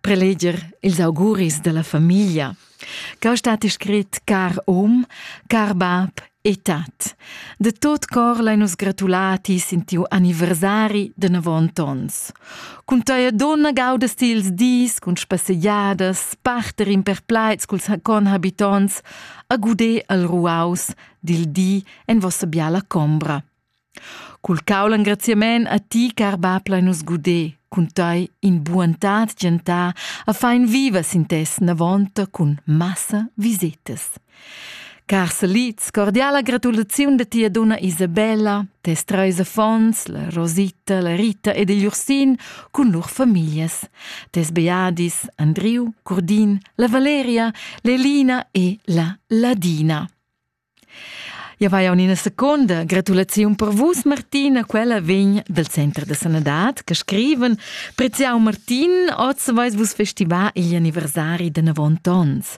Preleger ils auguris dalla famiglia. Cau stat scrit car um, car bab e tat. De tot cor l'hai nus gratulati sin tiu anniversari de navont ons. Cun teia donna gaudas ti ils dis cun spassegiadas, parter in per plaits culs conhabitons, a guder al ruaus dil di en vossa biala combra. Cul cau l'engraziament a ti, car bab, lein nus guder cun tei in buontad gentà a fein viva sin tes navonta cun massa visetas. Car Saliz, cordiala gratulaziun da tia donna Isabella, tes treis affons, la Rosita, la Rita ed il Ursin, cun lur famiglias, tes beadis Andriu, Curdin, la Valeria, l'Elina e la Ladina. Ja vai jau ina seconda gratulaziun per vus, Martina. Quella vegn dal Center da Sanadad che scriven Preziau Martin, oz vais vus festivar igl anniversari de navont ons.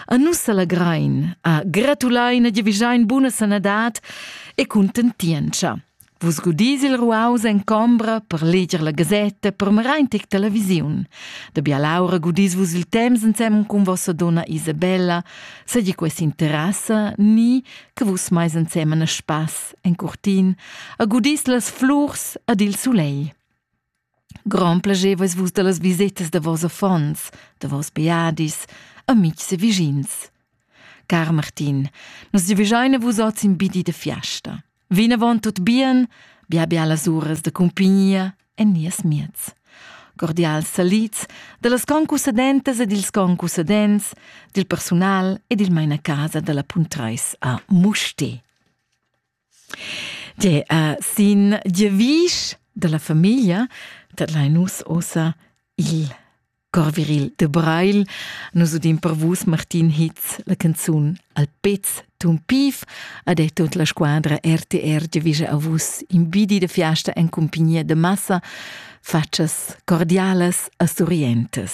A nus s'allegrain, a gratulain e giavischein buna sanadad e contentientscha. Vus gudis il ruaus en combra per leger la gasetta per merain tic televisiun. Da bialaura gudis vus il temps ensem cun vossa donna Isabella, seigi quest interessa ni che vus mais ensem en spass en curtin, a gudis las flurs ad il sulei. Grand plaschevas vus dallas visetas da vos affons, da vos beadis, amitgs e vischins. Car Martin, nus giavischein a vus oz in bidi da fiasta. Vinavon tut bien, bia bialas uras da cumpignia en nies miez. Cordials salids dallas concusadentas e dils concusadents, dil persunal e dil mainacasa dalla Puntreis a Musti. Tge è sin devisch dalla famiglia dat lai nus ossa il Corviril de Breil. Nus udin per vus Martin Hitz la canzun al pez tun pif ha detto la squadra RTR devige a vus imbidi de fiasta en compagnia de massa faccias cordialas a Surientes.